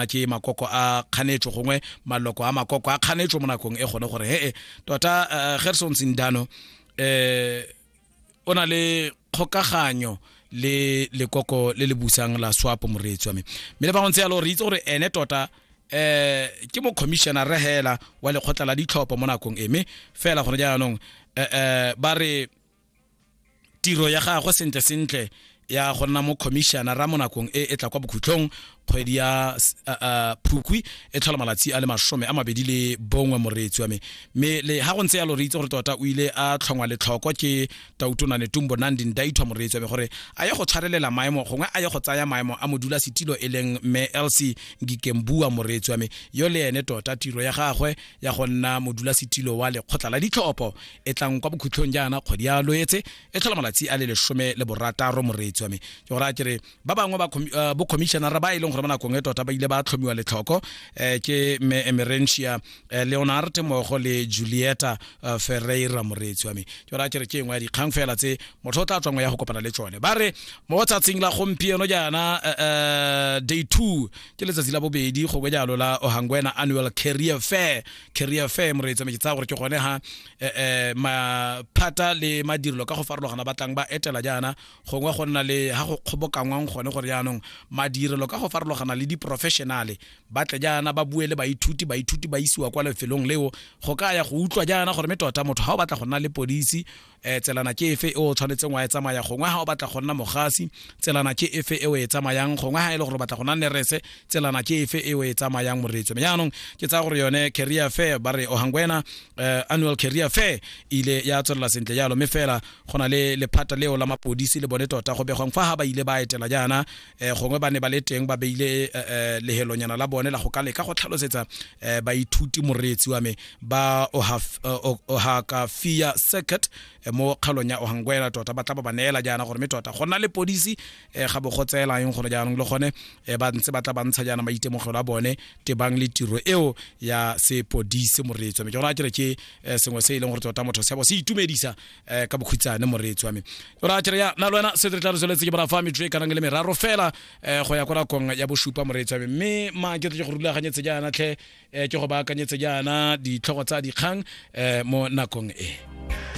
a ke makoko a kganetso gongwe maloko a makoko a kganetso mo nakong e gone gore hee tota eh, gerson sindano eh o na le kgokaganyo le lekoko le le busang la swapo moreetsi wa me mme le bangwe ntse yalo re itse gore ene tota eh ke mo commissioner re hela wa lekgotla la ditlhopho mo nakong e mme fela gone jaanong eh, eh ba re tiro ya gagwe sentle sentle ya go nna mo commissionera mo nakong e e tla kwa bokhutlhong kgwedi ya phukwi e tlhola malatsi a le masome a mabedi le bongwe moreetsi wa me mme le ga go ntse yalo re itse gore tota o ile a tlhongwa letlhoko ke tautonane tumbo nandi ndaithwa moreetsi wa me gore a ye go tshwarelela maemo gongwe a ye go tsaya maemo a modula setilo e leng mme lc ngikembua moreetsi wa me yo le ene tota tiro ya gagwe ya go nna modulasetilo wa lekgotla la ditlhopho e tlang kwa bokhutlhong jaana kgwedi ya loetse e tlhola malatsi a le lesome le borataro moreetsi wa me ke gore a kere ba bangwe ba eh, bocommissionara ba e leng gore ba nakong e tota ba ile ba tlhomiwa letlhoko um ke mme emerentia eh, leonard mogo le julieta ferreira moreetsi wa me ke gore a kere ke engwe ya dikgang fela tse motho o tla tswangwe ya go kopana le tsone ba re mo tsatsing la gompieno jaana day two ke letsatsi la bobedi go bejalo la ohangwena annual career fair career fair moreetsa me ke tsaya gore ke gone ha eh, eh, maphata le madirelo ka go farologana ba tlang ba etela jaana gongwe go nna le ha go kgobokanngwang gone gore jaanong madirelo ka go farologana le diprofessionale ba tle jaana ba bue le baithuti baithuti ba isiwa kwa lefelong leo go ka ya go utlwa jaana gore me tota motho ga o batla go nna le polisi um tselana ke efe e o tshwanetseng wa e tsamaya gongwe ga o batla go nna mogasi tselana ke efe e o e tsamayang gongwe ga e le gore o batla go nna nerese tselana ke efe e o e tsamayang moreetso mme jaanong ke tsaya gore yone career fair ba re ohangwena uh, annual career fair ile ya tswelela sentle jalo mme fela go na le lephata leo la mapodisi le bone tota go begwang fa ga ba ile ba etela jaana um gongwe ba ne ba le teng ba beile um lehelonyana la bone la go ka leka go tlhalosetsa um baithuti moreetsi wa me ba ohakafia circuit mo kgaolong ya ohanguela tota ba tla ba ba neela jaana gore mme tota go nna le podisi um ga bo go tseelang gore jaanong le gone um ba ntse ba tla ba ntsha jaana maitemogelo a bone tebang le tiro eo ya sepodisi moreetsi wa me ke gona ke re ke sengwe se e leng gore tota motho sebo se itumedisa eh ka bokhutshane moreetsi wa me ra tšere ya na lwena se re tla re tsweletse ke borafa metso e kanang le meraro fela eh go ya kwa rakong ya bosupa moreetsi wa me mme ma ke tle go rulaganyetse jaana tlhe eh, ke go baakanyetse jaana ditlhogo tsa dikgang eh, mo nakong e